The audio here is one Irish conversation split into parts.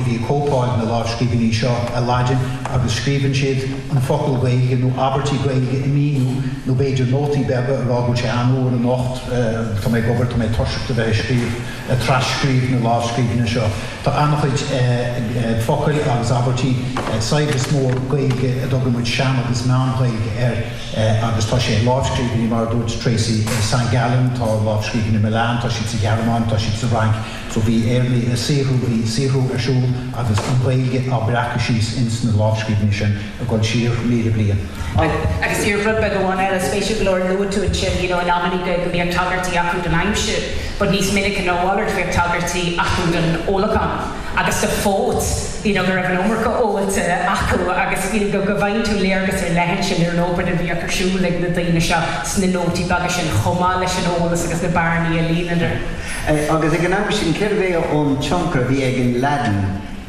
ag cóipeáil na lámhscríbhinní seo i Laidin agus scríobhann siad an focal Gaeilge nó abairtí Gaeilge i míniú nó b'fhéidir nótaí beaga a rá go bhfuil sé an-fhuar anocht, tá mé ag obair, tá mé tuirseach de bheith ag scríobh, ag tras-scríobh na lámhscríbhinne seo. Tá an-chuid focail agus abairtí, saibhreas mór Gaeilge a dtugann muid Sean agus Meán-Ghaeilge air agus tá sé i lámhscríbhinní mar a dúirt Tracey, San Gallen, tá lámhscríbhinní Milan, tá siad sa Ghearmáin, tá siad sa Fhrainc. So bhí Éireannaigh ag saothrú, bhí saothrú ar siúl agus an Ghaeilge á breacadh síos ins na lámhscríbhinní sin ag dul siar míle bliain. Agus díreach rud beag amháin eile, spéisiúil go leor, luaigh tú ansin, you know, amannaí go mbíodh tagairtí acu don aimsir but níos minice ná a mhalairt bhíodh tagairtí acu don ólachán agus do phóit, you know, go raibh an iomarca óilte acu agus, you know, go bhfaigheann tú léargas ar leith ansin ar an obair a bhíodh ar siúl ag na daoine seo sna nótaí beaga sin chomh maith leis an eolas agus na bearnaí a líonadar. Agus ag an am sin, cérbh é an tionchar a bhí ag an Laidin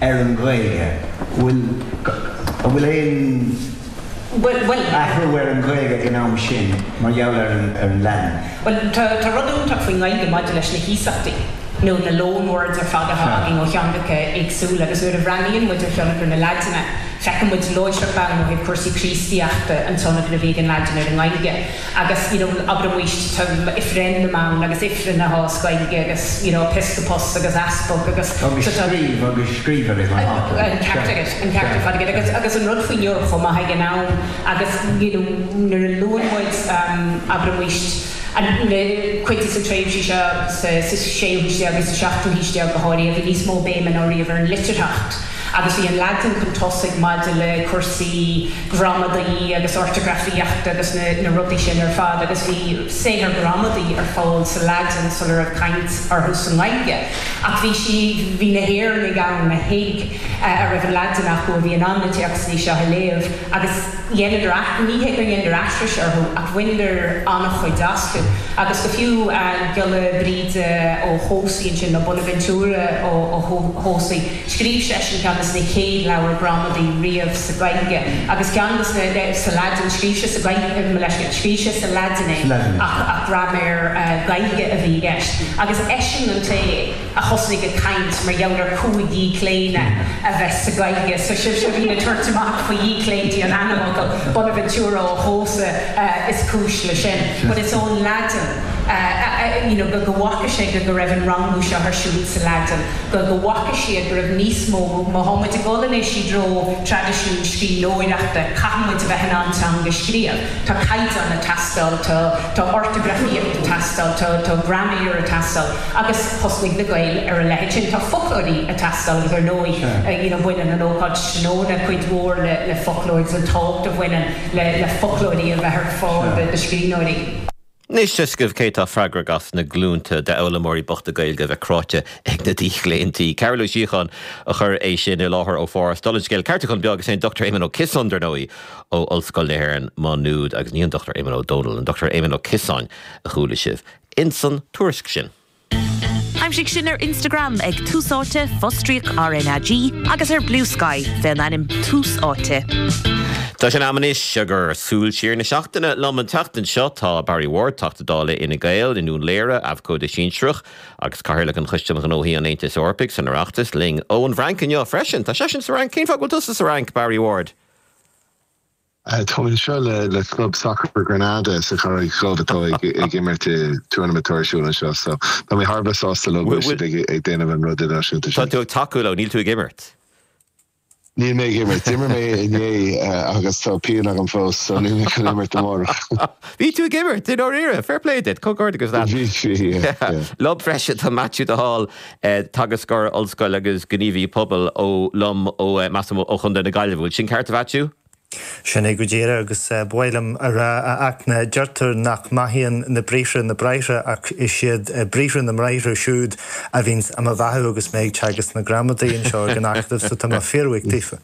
ar an Ghaeilge? An bhfuil aon athrú ar an Ghaeilge ag an am sin mar gheall ar an Laidin? Bhuel, tá rud iontach faoin nGaeilge maidir leis na hiasachtaí, nó na loan words ar fad atá againn ó theangacha éagsúla, agus nuair a bhreathnaíonn muid ar thionchar na Laidine, feiceann muid láithreach bonn ó thaobh cúrsaí Críostaíochta an tionchar a bhí ag an Laidin ar an nGaeilge. agus you know abraimis tá um oifreann na mban agus oifreann sa Ghaeilge agus you know Episcopus agus Easpag agus Agus so tá scríobh agus scríobh ar an an an ceart agat, an ceart ar fad agat agus agus an rud faoi ndeara chomh maith ag an am agus you know nuair a luann muid um abraimis an le cuid des na tréimhsí seo sa sa séú haois déag agus sa seachtú haois déag go háirithe a bhí níos mó béime ná riamh ar an liteartacht agus bhí an Laidin chun tosaigh maidir le cúrsaí gramadaí agus ortagrafaíochta agus na rudaí sin ar fad agus bhí saothair ghramadaí ar fáil sa Laidin sula raibh caint orthu sa nGaeilge ach bhí bhí na hÉireannaigh ann a thuig a raibh an Laidin acu a bhí in ann na téacsanna seo a léamh agus dheineadar ní hé gur dheineadar aithris orthu ach bhaineadar an-chuid astu agus go fiú Giolla Bríde Ó hEodhasa ansin nó Bonaventura Ó hEodhasa Scríobh seisean ceann de na chéad leabhair ghramadaí riamh sa Ghaeilge, agus ceann de na, eh, sa Laidin, scríobh sé sa Ghaeilge, eh, mo leithscéal, scríobh sé sa Laidin é, ach, ach graiméar, eh, Gaeilge a bhí i gceist, agus eisean an té a thosnaigh ag caint mar gheall ar chúig dhíochlaonadh a bheith sa Ghaeilge, so sibhse a bhíonn ag tabhairt amach faoi dhíochlaontaí an ainmfhocail, Bonaventura Ó hEodhasa, eh, is cúis leis sin, but it's ón Laidin, eh, eh, eh, you know, go, go bhfaca sé go, go raibh an rangú seo ar siúl sa Laidin. go bhfaca siad go raibh níos mó, má tá muid ag goil anois i dtreo traidisiún scríbhneoireachta, caithfidh muid a bheith in ann teanga a scríobh. Tá caighdeán ag teastáil, tá ortagrafaíocht ag teastáil, tá graiméar ag teastáil agus thosnaigh na Gaeil ar a leithéid sin. Tá foclóirí ag teastáil agus ar ndóigh you know bhaineann an ócáid tráthnóna cuid mhór le foclóir agus an tábhacht a bhaineann le foclóirí a bheith ar fáil do scríbhneoirí. Anois tá a fhios agaibh cé atá freagrach as na glúnta d'fhoghlaimeoirí bochta Gaeilge a bheith cráite ag na díochlaontaí? Cearbhall Ó Síocháin a chuir é sin i láthair ó Pháras. Dála an scéil ceartúchán beag is é an Dr Éamon Ó Ciosáin, dar ndóigh, ó Ollscoil na hÉireann, Má Nuad, agus ní an Dr Éamonn Ó Dónaill, an Dr Éamon Ó Ciosáin a chuala sibh insan tuairisc sin. Aimsigh sinn ar Instagram ag Tús Áite, fostríoc RnaG, agus ar Bluesky fé an ainm Tús Áite. Tá sé am anois ag ár súil siar na seachtaine liom an tseachtain seo tá Barry Ward Teachta Dála Fhine Gael i nDún Laoghaire, abhcóide sinsearach agus Cathaoirleach an Choiste um Ghnóthaí an Aontais Eorpaigh san Oireachtas linn ón bhFrainc inniu freisin. Tá seisean sa Fhrainc. Cén fáth go bhfuil tusa sa Fhrainc, Barry Ward? Tá mé anseo le Club Sacair Granada sa Charraig Dhubh atá ag imirt i dturnaimint atá ar siúl anseo so tá mé thar a bheith sásta leo go bhfuil siad ag déanamh an rud idirnáisiúnta sin. Tá tú ag tacú leo, níl tú ag imirt. Níl mé ag imirt. D'imir mé inné agus tá pian agam fós so níl mé chun imirt amárach. Bhí tú ag imirt i ndáiríre, fair play duit, comhghairdeachas leat. Bhí, bhí, yeah, yeah. Liom freisin, tá Maitiú de Hál, teagascóir ollscoile agus gníomhaí pobail ó liom, ó, measaim, ó Chontae na Gaillimhe. Bhfuil sin ceart a Mhaitiú? Sin é go díreach, agus ba mhaith liom a rá, a Fhachtna, deirtear nach mbeathaíonn na briathra na bráithre, ach is iad briathra na mbráithre siúd a bhíonns á mo bheathú agus mé ag teagasc na gramadaí anseo ag an Acadamh, so tá mé fíorbhuíoch daofa.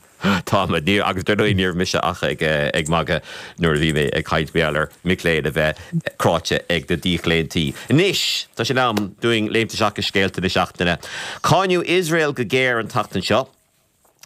Táimid fíor, agus ar ndóigh níorbh mise ach ag magadh nuair a bhí mé ag caint mar gheall ar mhic léinn a bheith cráite ag na díochlaontaí. Anois, tá sé in am dúinn léimt isteach i scéalta na seachtaine. Cáineadh Iosrael go géar an tseachtain seo.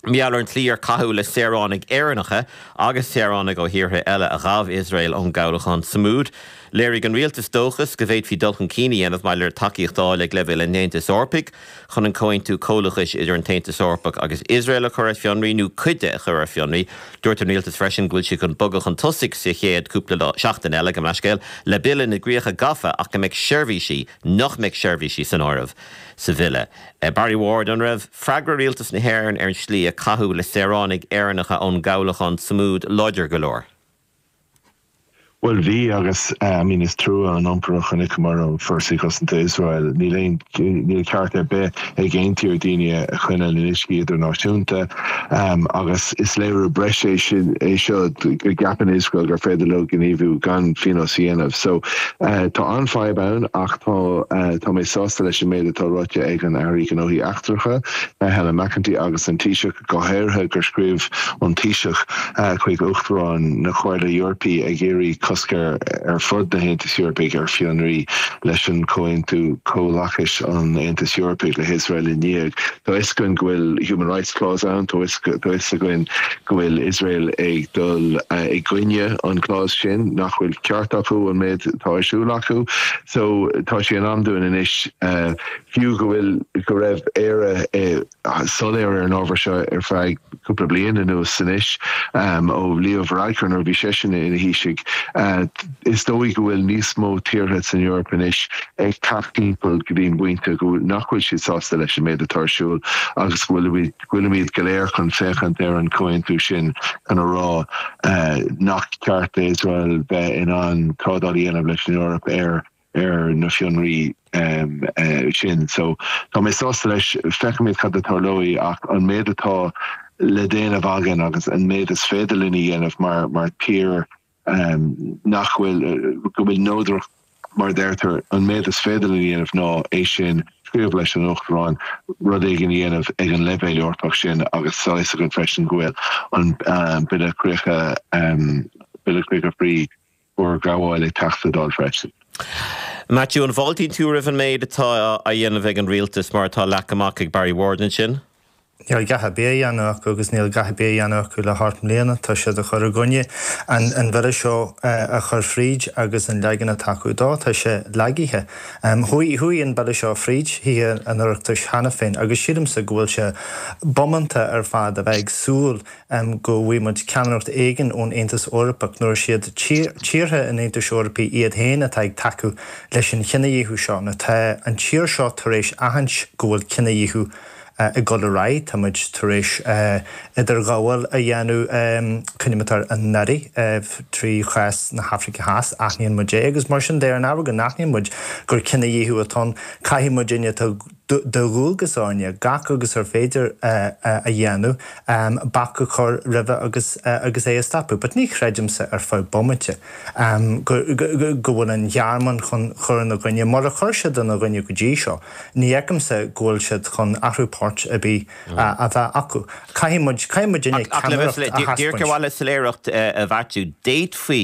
mar gheall ar an tslí ar caitheadh le saoránaigh Éireannacha agus saoránaigh ó thíortha eile a ghabh Iosrael ón gcabhlachán Sumud, léirigh an rialtas dóchas go bhféadfaí dul chun cinn a dhéanamh maidir le tacaíocht a fháil ag leibhéal an Aontais Eorpaigh chun an Comhaontú Comhlachais idir an tAontas Eorpach agus Iosrael a chur ar fionraí nó cuid de a chur ar fionraí. Dúirt an rialtas freisin go bhfuil siad chun bogadh chun tosaigh sa chéad chúpla seachtain eile, gabh mo leithscéal, le Bille na gCríocha Gafa ach go mbeidh seirbhísí, nach mbeidh seirbhísí san áireamh sa bhille. Barry Ward, An raibh freagra rialtas na hÉireann ar an slí a caitheadh le saoránaigh Éireannacha ón gcabhlachán Sumud láidir go leor? Bhuel, bhí agus I mean is trua an iompar a chonaiceamar ó Fhórsaí Cosanta Iosrael. Níl aon, níl ceart ar bith ag aon tír daoine a choinneáil in uiscí idirnáisiúnta. agus is léiriú breise é sin é seo go gceapann Iosrael gur féidir leo gníomhú gan phionós a dhéanamh. So tá an-fhadhb ann ach tá mé sásta leis an méid atá ráite ag an Airí Gnóthaí Eachtracha, Helen McEntee agus an Taoiseach go háirithe gur scríobh an Taoiseach chuig Uachtarán na Comhairle Eorpaí ag iarraidh cosc ar fud na hAontais Eorpaigh ar fionraí leis an Comhaontú Comhlachais an Aontais Eorpaigh le hIosrael i ndiaidh Tá fhios againn go bhfuil human rights clause ann, tá fhios againn go bhfuil Iosrael ag dul i gcoinne an clause sin, nach bhfuil ceart acu an méid atá ar siúl acu. So tá sé in am dúinn anois fiú go bhfuil go raibh Éire soiléir ar an ábhar seo ar feadh cúpla bliain anuas anois, ó Leo Varadkar nuair a bhí seisean ina Thaoiseach. Is dóigh go bhfuil níos mó tíortha san Eoraip anois ag teacht timpeall go dtí an bpointe go nach bhfuil siad sásta leis an méid atá ar siúl agus go bhfuilimid go léir chun féachaint ar an chomhaontú sin chun a rá nach ceart d'Iosrael bheith in ann trádáil a dhéanamh leis an Eoraip ar ar na fionraí sin. So, tá mé sásta leis, feicimid cad a tarlóidh, ach an méid atá le déanamh againn agus an méid is féidir linn a dhéanamh mar mar tír nach bhfuil, go bhfuil neodracht mar a deirtear, an méid is féidir linn a dhéanamh ná é sin, scríobh leis an Uachtarán rud éigin a dhéanamh ag an leibhéal Eorpach sin agus tá a fhios againn freisin go bhfuil an Bille Críocha, Bille Críocha faoi, fhorghabháil ag teacht sa Dáil freisin. Maitiú, An bhfáiltíonn tú roimh an méid atá á dhéanamh ag an Rialtas mar atá leagtha amach ag Barry Ward ansin? níl a dhath ar bith á dhéanamh acu agus níl a dhath ar bith á dhéanamh acu le hocht mbliana, tá siad ag cur i gcoinne an Bhille seo a chur fríd agus an leagan atá acu dó, tá sé lagaithe. Chuaigh an Bille seo fríd Thithe an Oireachtais cheana féin agus sílimse go bhfuil sé bómánta ar fad a bheith ag súil am go bhfaighidh muid ceannaireacht éigin ón Aontas Eorpach nuair is iad tíortha an Aontais Eorpaigh iad féin atá ag tacú leis an chinedhíothú seo, nó tá an tír seo tar éis aithint go bhfuil cinedhíothú ag dul ar aghaidh, tá muid tar éis idirghabháil a dhéanamh, cuir i gcuimhne don Aire, i gcás na hAfraice Theas, aithníonn muid é agus mar sin de, ar an ábhar go n-aithníonn muid gur cinedhíothú atá ann, caithfidh muid aithint go. de dhualgas orainne gach agus is féidir a dhéanamh, bac a chur roimhe agus é a stopadh. But ní chreidimse ar feadh bomaite go bhfuil an Ghearmáin chun cur ina gcoinne. Mura chuir siad ina gcoinne go dtí seo, ní fheicimse go bhfuil siad chun athrú poirt ar bith a bheith acu. Caithfidh muid, caithfidh muidinne ceannaireacht a thaispeáint. Ach le bheith díreach ar mhaithe le soiléireacht a Mhaitiú, d'fhéadfaí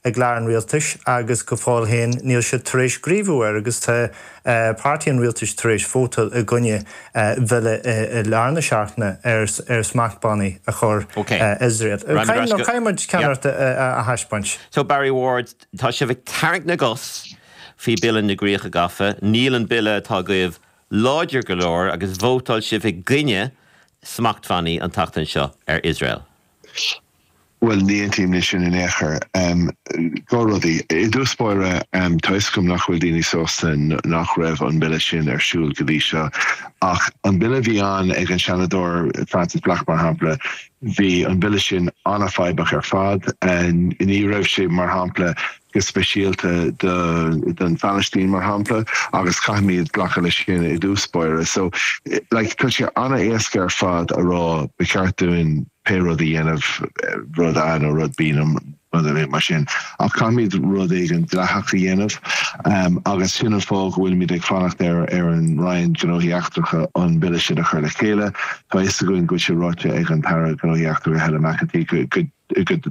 i gclár an rialtais agus go fóill féin níl siad tar éis gníomhú air agus tá páirtí an rialtais tar éis vótáil i gcoinne bhille i lár na seachtaine ar smachtbhannaí a chur ar Iosrael. Caithfidh muid ceannasaíocht a thaispeáint. So Barry Ward, tá sibh ag tarraingt na gcos faoi Bille na gCríocha Gafa. Níl an bille atá agaibh láidir go leor agus vótáil sibh i gcoinne smachtbhannaí an tseachtain seo ar Iosrael. Bhuel, ní aontaím le sin in aon chor. Dhá rud, i dtús báire, tuigim nach bhfuil daoine sásta nach raibh an Bille sin ar siúl go dtí seo. Ach an Bille a bhí ann ag an Seanadóir Frances Black, mar shampla, bhí an Bille sin an-fadhbach ar fad. Ní raibh sé, mar shampla, go speisialta don Phalaistín, mar shampla, agus caithfimid glacadh leis sin i dtús báire. So, like, tá sé an-éasca ar fad a rá, ba cheart dúinn pé rud a dhéanamh, rud A nó rud B nó rud ar bith mar sin, ach caithfimid rud éigin dleathach a dhéanamh, um, agus sin an fáth go bhfuilimid ag fanacht ar, ar an Roinn Gnóthaí Eachtracha an Bille sin a chur le chéile. Tá fhios againn go bhfuil sé ráite ag an tAire Gnóthaí Eachtracha, Helen McEntee, go, go, go,